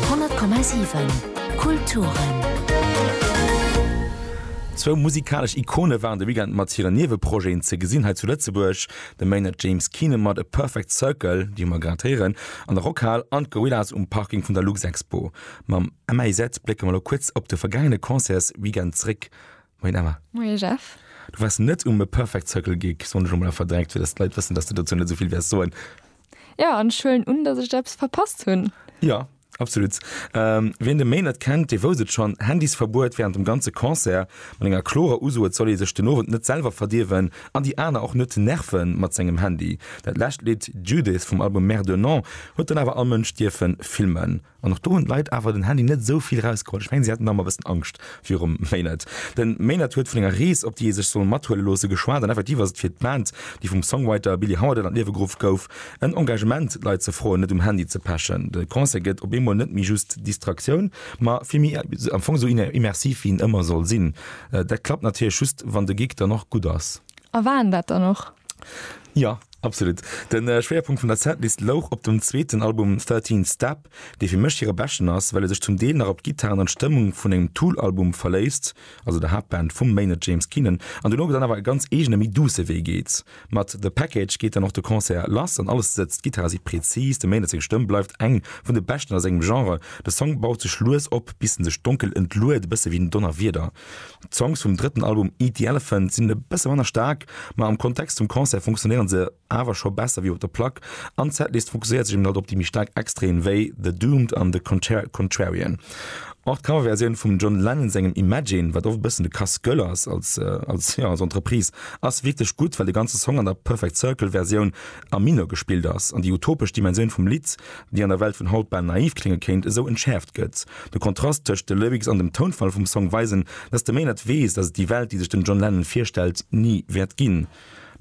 10,7 Kulturen. Zwou musikalesch Ikone waren de Weekend mat hire Nieweprojeten ze gesinn hei zu Lëtzebuerg. De Maynard James Keenan mat A Perfect Circle, déi hu mer grad héieren, an der Rockhal an d'Gorillaz um Parking vun der Luxexpo. Mam MAZ blécke mer elo kuerz op de vergaangene Concertsweekend zréck. Moien Emma. Moie Jeff. Du waars net um A Perfect Circle Gig, soen ech elo mol a verdrängt, fir datt d'Leit wëssen, datt de dozou net esou vill wäers soen. Ja an ech huelen un dass ech eppes verpasst hunn. Jo, absolut. Wien de Maine net kennt, dee wousst et schonn, Handysverbuet wärend dem ganze Concert, mat enger klorer Uso, et soll ee sech den Owend net selwer verdierwen an déi aner och net nerve mat sengem Handy. Dat lescht Lidd Judith vum Album Mère de Nantes huet dann awer all Mënsch dierfe filmen. An och do hunn d'Leit awer den Handy net esou vill erausgeholl. Ech mengen, si haten da mol e bëssen Angscht virum Maynard. De Maynard huet vun enger Rees, op déi ee sech soll mathuele loosse, geschwat. An effektiv ass et fir d'Band, déi vum Songwriter Billy Howerdel an d'Liewe geruff gouf, en Engagement, d'Leit ze froen, net um Handy ze pechen. De Concert gëtt op eemol net méi just Distraktioun, ma vill méi am Fong esou immersiv, wéi en ëmmer soll sinn. Dat klappt natierlech just, wann de Gig dann och gutt ass. A waren dat dann och? Jo, absolut. De Schwéierpunkt vun der Setlist louch op dem zweeten Album Thirteen Step, dee fir mech hire beschten ass, well e sech zum Deel nach op d'Gittaren an d'Stëmmung vun engem Tool-Album verléisst, also der Haaptband vum Maynard James Keenan, an duerno dann awer e ganz eegene méi duusse Wee geet. Mat The Package geet dann och de Concert lass an alles sëtzt, d'Gittare si präzis, dem Maynard seng Stëmm bleift eng vun de beschten a sengem Genre, de Song baut sech lues op, bis en sech donkel entluet, e bësse wéi en Donnerwieder. D'Songs vum drëtten Album Eat the Elephant sinn e bësse manner staark, ma am Kontext zum Concert funktionéiere se awer scho besser wéi op der Plack an d'Setlist fokusséiert sech emol net op déi méi staark Extreem wéi The Doomed an The Contrarian. Och d'Coverversioun vum John Lennon sengem Imagine, wat oft e bëssen de Casse Gueule ass als Entreprise, ass wierklech gutt, well de ganze Song an der Perfect Circle Versioun a Mineur gespillt ass, an déi utopesch Dimensioun vum Lidd, déi an der Welt vun haut bal naiv klénge kéint, esou entschäerft gëtt. De Kontrast tëscht de Lyrics an dem Tounfall vum Song weisen, dass de Maynard weess, dass et déi Welt, déi sech den John Lennon virstellt, ni wäert ginn.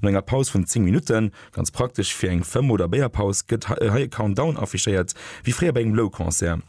No enger Paus vun 10 Minutten, ganz praktesch fir eng Fëmm oder Béierpaus, gëtt hei e Countdown affichéiert, wéi fréier bei engem Low-Concert.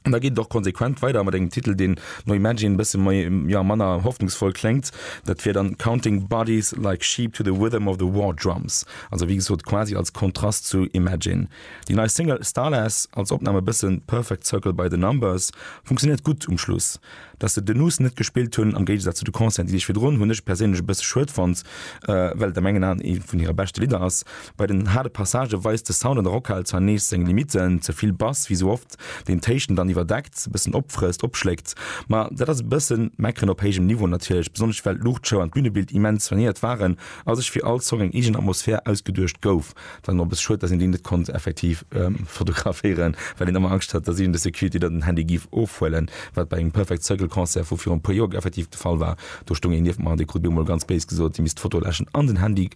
An da geet et och konsequent weider mat engem Titel, deen no Imagine e bësse méi, jo, manner hoffnungsvoll kléngt. Dat wier dann Counting Bodies Like Sheep to the Rhythm of the War Drums, also wéi gesot quasi als Kontrast zu Imagine. Déi nei Single Starless als Opnam e bësse Perfect Circle by the Numbers funktionéiert gutt um Schluss. Dass se den Us net gespillt hunn, am Géigesaz zu de Concerten, déi sech virdrun, hunn ech perséinlech e bësse schued fonnt, well et a mengen Aen ee vun hire beschte Lidder ass. Bei den haarde Passagë weist de Sound an der Rockhal zwar nees seng Limitten, ze vill Bass, wéi sou oft, deen d'Héichten dann iwwerdeckt, e bëssen opfrësst, opschléckt. Ma dat ass e bëssen Meckeren op héijem Niveau natierlech, besonnesch well d'Luuchtshow an d'Bünebild immens soignéiert waren a sech fir all Song eng eegen Atmosphär ausgeduecht gouf. dann op es schued dass een déi net konnt effektiv fotograféieren well een ëmmer Angscht hat dass iergend e Security der den Handy giff ofhuelen wat bei engem Perfect Circle Concert vu virun e puer Joer effektiv de Fall war, do stoung een nieft mer an dee krut mir emol ganz béis gesot hie misst d'Foto läschen an den Handy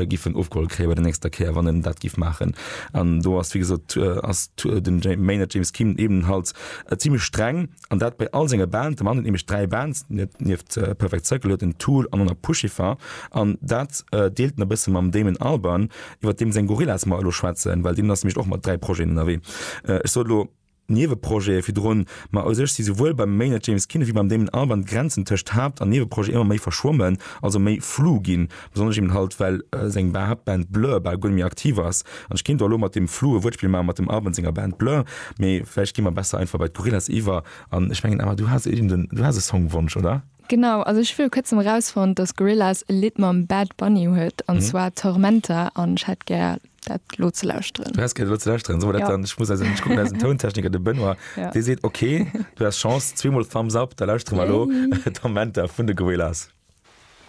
giffen ofgeholl kréien bei der nächster Kéier wann en dat giff maachen an do ass wéi gesot ass den Maynard James Kim ebenenhalts zimlech streng. An dat bei all senge Bands. De Mann huet nämlech dräi Bands, nieft Perfect Circle huet en Tool an och nach Puscifer. An dat deelt en e bësse mam Damon Albarn, iwwer deem seng Gorillaz mer elo schwätzen, well deen ass nämlech och mat dräi Projeten ënnerwee. Ech sot elo Nieweprojete virdrun, ma u sech si souwuel beim Maynard James Keenan wéi beim Damon Albarn d'Grenzen tëscht Haapt an Nieweprojet ëmmer méi verschwommen, also méi flu ginn, Besonnesch eben halt, well seng Beatband Blur bal guer net méi aktiv ass. An ech kéint och elo mat deem fluge Wuertspill maachen, mat dem Arben senger Band Blur, mee vläicht gi mer besser einfach bei d'Gorillaz iwwer. An ech mengen, Emma, du has iergend en, du has e Songwonsch, oder? Genau, also ech hu viru kuerzem erausfonnt, dass d'Gorillaz e Lidd mam Bad Bunny huet, an zwar Tormenta, an ech hätt gär, dat elo ze lauschteren. Du häss gär, dat elo ze lauschteren? Soe mer dat dann, ech muss eisen, ech kucken eisen Tountechniker, de Benoît, dee seet, ok, du has Chance, zweemol Thumbs up, da lauschtere mer elo Tormenta vun de Gorillaz.